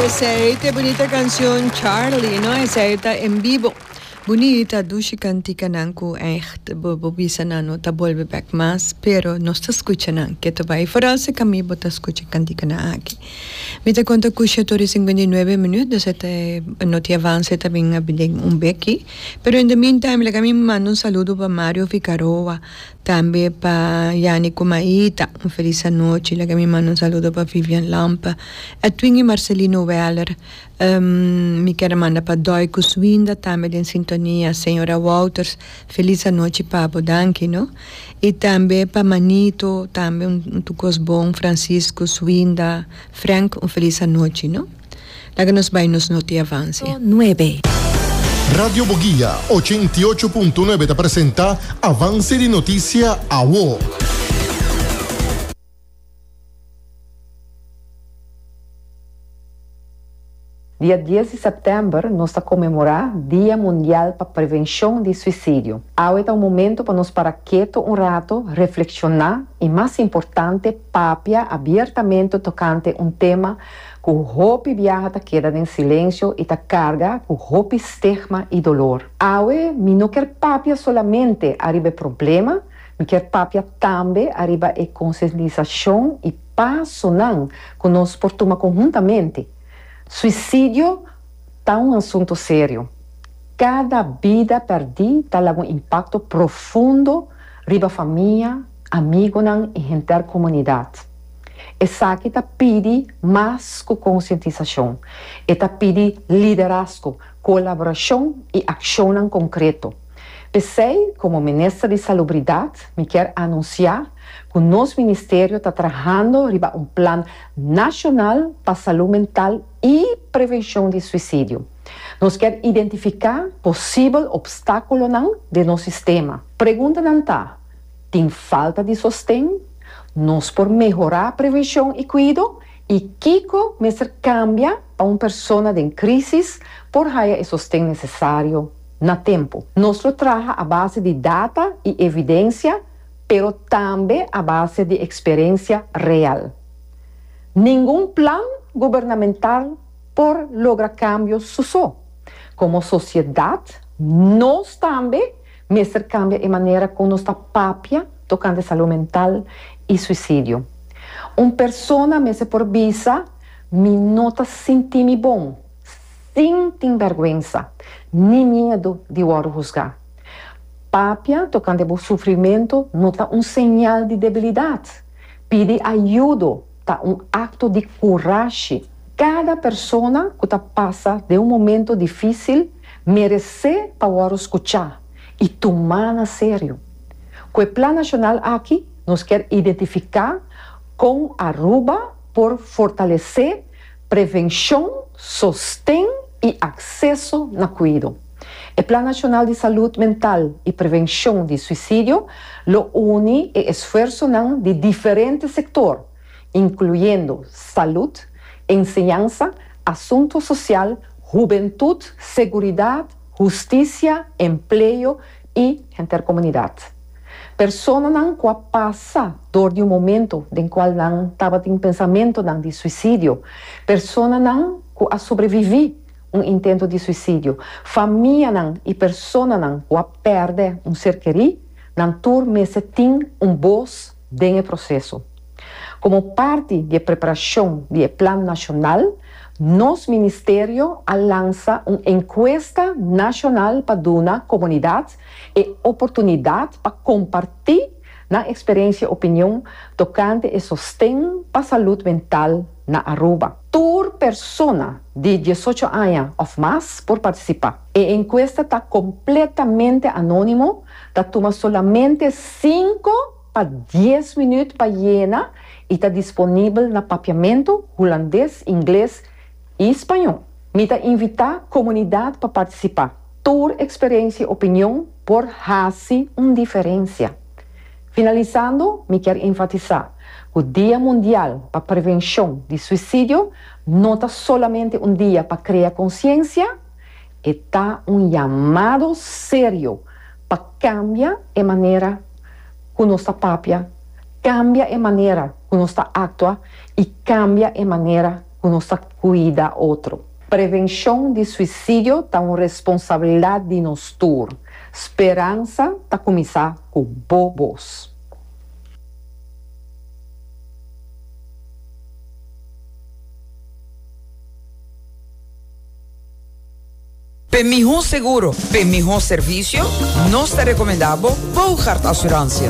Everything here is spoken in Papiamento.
Esei ta e bunita cancion Charlie no esei ta en bibo. Bunita dushi canticanan cu echt bo bisa nan no ta bolbe bek mas pero nos ta scucha nan ke ta bay foral si cami bo ta scucha e canticanan aki. Mi ta conta cu shetor y cincuenta y nuebe minuut dus eta e noti avance ta bin habi den un beki pero in the meantime laga mi manda un saludo pa Mario Figaroa. Tambe pa Yani ku Maita un felis anochi. Laga mi manda un saludo pa Vivian Lamp, Edwin i Marcelino Weller. Mi kere manda pa Doy ku Swinda tambe den sintonia. Señora Wouters felis anochi pa bo. Danki no. I tambe pa Manito tambe un tukos bon, Francisco, Swinda, Frank un felis anochi no. Laga nos bai nos noti Avance. Punto nuebe. Radio Boguia ochenta i ocho punto nuebe ta presenta Avance di Noticia Awo. Dia dies di sèptèmber nos ta konmemorá Dia Mundial pa Prevenshon di Suisidio. Awe ta un momentu pa nos para keto un rato, reflekshoná i mas importante papia abiertamente tokante un tema ku hopi biaha ta keda den silensio i ta karga ku hopi stigma i dolor. Awe mi no kier papia solamente ariba e problema, mi kier papia tambe ariba e konsientisashon i pasonan ku nos por tuma konhuntamente. Suisidio ta un asunto serio. Kada bida pèrdí ta laga un impakto profundo riba famia, amigunan i henter komunidat. Esaki ta pidi mas ku konsientisashon. E ta pidi liderazgo, kolaborashon i akshonnan konkreto. P'esei, komo Minister di Salubridat, mi kier anunsiá ku nos ministerio ta trahando riba un plan nashonal pa salú mental i prevenshon di suisidio. Nos kier identifiká posibel opstákulonan den nos sistema. Preguntanan ta. Tin falta di sosten? Nos por mehorá prevenshon i kuido? I kiko mester kambia pa un persona den krísis por haya e sosten nesesario na tempu? Nos lo traha a base di data i evidensia, pero tambe a base di eksperensia real. Ningun plan gubernamental por logra kambio su so. Komo sosiedat, nos tambe. Mester kambia e manera ku nos ta papia tokante salú mental i suisidio. Un persona mester por bisa, Mi no ta sinti mi bon, sin tin bèrgwensa ni miedu di wòrdu husgá. Papia tokante bo sufrimentu no ta un señal di debilidat. Pidi ayudo. Ta un akto di kurashi. Kada persona ku ta pasa den un momentu difísil meresé pa wòru skuchá i tumá na serio. Ku e Plan Nashonal aki nos kier identifiká kon Aruba por fortalesé. Prevenshon, sosten i akseso na kuido. E Plan Nashonal di Salud Mental i Prevenshon di Suisidio lo uni e esfuersonan di diferente sektor, inkluyendo salud, enseñansa, asuntu sosial, hubentut, seguridat, hustisia, empleo, i henter komunidat. Personanan ku a pasa dor di un momento den kual nan tabatin pensamentunan di suisidio, personanan ku a sobreviví un intento di suisidio, famianan i personanan ku a pèrdè un ser kerí, nan tur mester tin un bos, den e proseso. Komo parti di e preparashon di e plan nashonal, nos ministerio a lansa un enkuesta nashonal pa duna komunidat e oportunidat pa kompartí nan eksperensia opinion tokante e sosten pa salud mental na Aruba. Tur persona di diesocho aña of mas por participa. E encuesta ta completamente anonimo, ta tuma solamente cinco pa dies minuut pa yena y ta disponibel na Papiamento, Hulandes, Ingles y Spañol. Mi ta invita comunidad pa participa. Tur experiencia y opinion por haci un diferencia. Finalisando, mi kier enfatisá ku Dia Mundial pa Prevenshon di Suisidio no ta solamente un dia pa krea konsiensia, e ta un yamado serio pa kambia e manera ku nos ta papia, kambia e manera ku nos ta aktua i kambia e manera ku nos ta kuida otro. Prevenshon di suisidio ta un responsabilidat di nos tur. Speransa ta kuminsá ku bo bos. P'e mihó seguro, p'e mihó servisio, nos ta rekomendá bo Bougaard Assurantie.